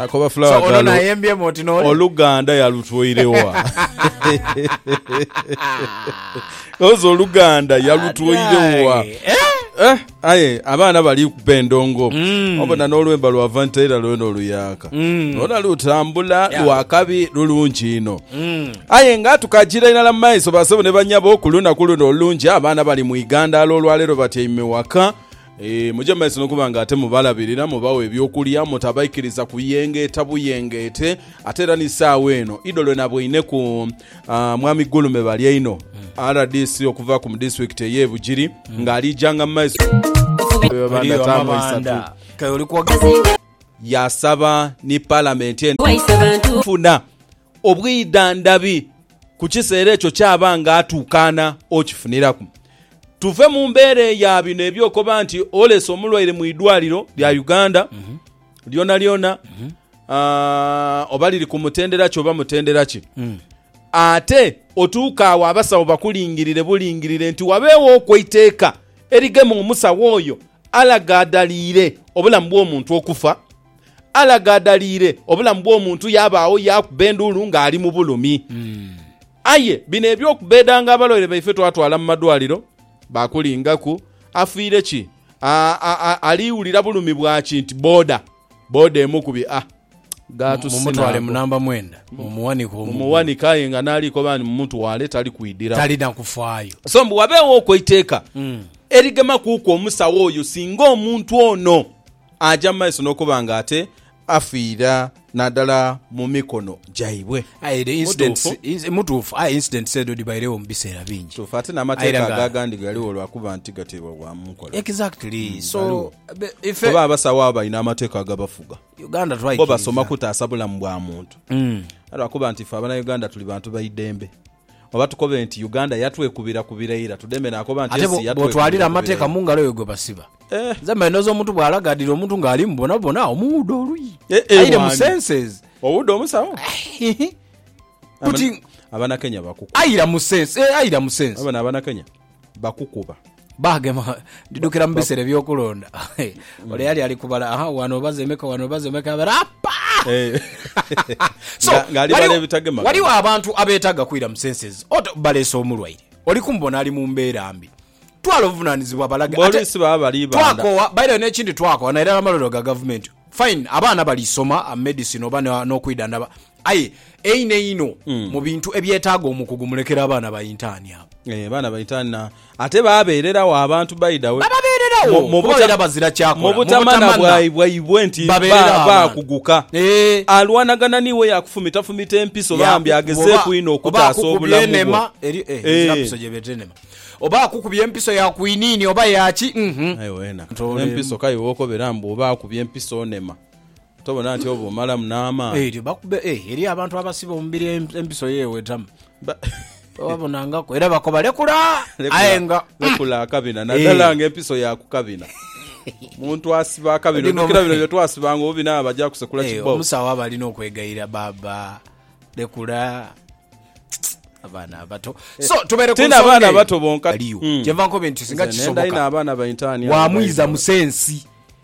Akoba fulawa So, ono gano nayembyemu oti nole. oluganda yalutwoire wa? Ozi oluganda yalutwoire wa? Adai. Eh? Eh, aye abaana bali kuba endongo Mm. obona n'olwemba lwa vantera lwena oluyaaka Mm. lwona lutambula Yeah. lwakabi lulungi ino Mm. aye nga tukagira irala mu maiso basebo ne banyabo ku lunaku luno olulungi abaana bali mu igandaalo olwaleero batyaime waka Muje mu maiso n'okuba nga ate mubalabirira, mubawa eby'okulya, mutabaikiriza kuyengeeta buyengeete. Ate era ni saagho eno idho lwe naboineku Mwami Gulume Balyaino, rdc okuva ku mu disitulikiti ey'e Bugiri nga aliijanga mu maiso Eriyo amabanda kale oli kwogera. Yasaba ni Palamenti eno okufuna obwidhandhabi ku kiseera ekyo ky'aba nga atuukaana okifuniraku. Tuve mu mbeera eya bino eby'okoba nti olese omulwaire mu idwaliro lya Uganda lyonalyona ah, oba liri ku mutendera ki oba mutendera ki, ate otuuka agho abasawo bakulingirire bulingirire nti wabeegho okwo eiteeka erigema omusawo oyo alagaadhaliire obulamu bw'omuntu okufa. alagaadaliire obulamu bw'omuntu yaabaagho yaakuba enduulu ng'ali mu bulumi. Aye bino eby'okubbeedanga abalwaire baife twatwala mu madwaliro baakulingaku, Afiire ki? A, a, a, ali wulira bulumi bwa ki? Nti boda, boda emu ku bi, a, gaatusi Mumutwale mu naago. namba mwenda, mumuwanike omugulu. Mumuwanike aye nga n'ali koba nti mumutwale tali kwidhiragho. Talina kufaayo. So mbu wabeegho oku eiteeka erigema kuuku omusawo oyo singa omuntu ono Aja mu maiso n'okuba nga ate afiira naadala mu mikono gyaibwe. Aye the incidents, Mutuufu. ins- mutuufu, aye incidents edho dhibairegho mu biseera bingi. Kituufu, ate Aira n'amateeka nga- ago agandi galigho lwa kuba nti gateebwa bwa mu nkola. Exactly. Mm, So, ghaligho. be- ife- Oba abasawo abo balina amateeka agabafuga. Uganda Bo twaikiriza. basoma kutaasa bulamu bwa muntu. Aye lwakuba nti ife Abanauganda tuli bantu ba idembe. Oba tukobe nti Uganda yatwekubira-kubira ira tudeme nakoba nti Ate ensi bwo- bw'otwalira yatwekubira-kubira amateeka ira. mu ngalo yo gwe basiba. Eh. Nze mba ndhooza omuntu bw'alagaadira omuntu ng'ali mu bwonabwona agho omuwuuda oluyi. Eh, eh, Aire mu mwaami. senses. Owuuda omusawo? Hihi. Kuti Abana- Abanakenya bakukuba. aira mu sense, eh, aira mu sense. Wabona Abanakenya bakukuba. Baagema ndidukira mu biseera eby'okulonda. Ole yali ali kubala, aha, wano obaze emeka, wano obaze emeka, abera apa! Eh. So, Nga- ng'ali waliwo- bala ebitagema. waliwo abantu abeetaaga kwira mu senses oto baleese omulwaire oli kumubona ali mu mbeera mbi twala obuvunaanyizibwa balage Ate Poliisi baba bali banda. twakowa baire n'ekindi twakowa nairala amalwaliro ga gavumenti fine abaana balisoma uh, medicine oba no- n'okwidhandaba Aye einho einho mu bintu ebyetaaga omukugu mulekere abaana ba intaani abo. Eeh baana ba intaani na ate babeereragho abantu by the way Bababeereragho mu kuba babeera bazira kyakola, mu butamanha butamanha bwaibwe nti babeereragho ba abantu. baakuguka. Eeh. Alwanagana n'iwe yakufumitafumiita empiso bambi Yakukuba oba, agezeeku inho oba okutaasa akukubye obulamu bwo. enema, eriyo eh ezira Eeh. mpiso gyebeeta enema. Oba akukubye empiso ya kwiniini oba ya ki uhmm. Aye weena Ntoleemu. empiso kale wokobera mbu oba akubye empiso onema. Tobona nti oba omalamu n'amaani? Eryo bakube e, eriyo abantu abasiba omubiri empiso ye ewetamu. Babonangaku era bakoba, Lekula! Aye nga. Lekula akabina, nadala nga empiso ya ku kabina. Omuntu asiba akabina, ojukira bino bye twasibanga obubina nga baja kusekula kibao? Omusawo aba alina okwegayira, Baaba, lekula. abaana abato eh, so tubere ku abaana abato bonka aliyo hmm. kyenva nkobe nti singa kisoboka wa mwiza musensi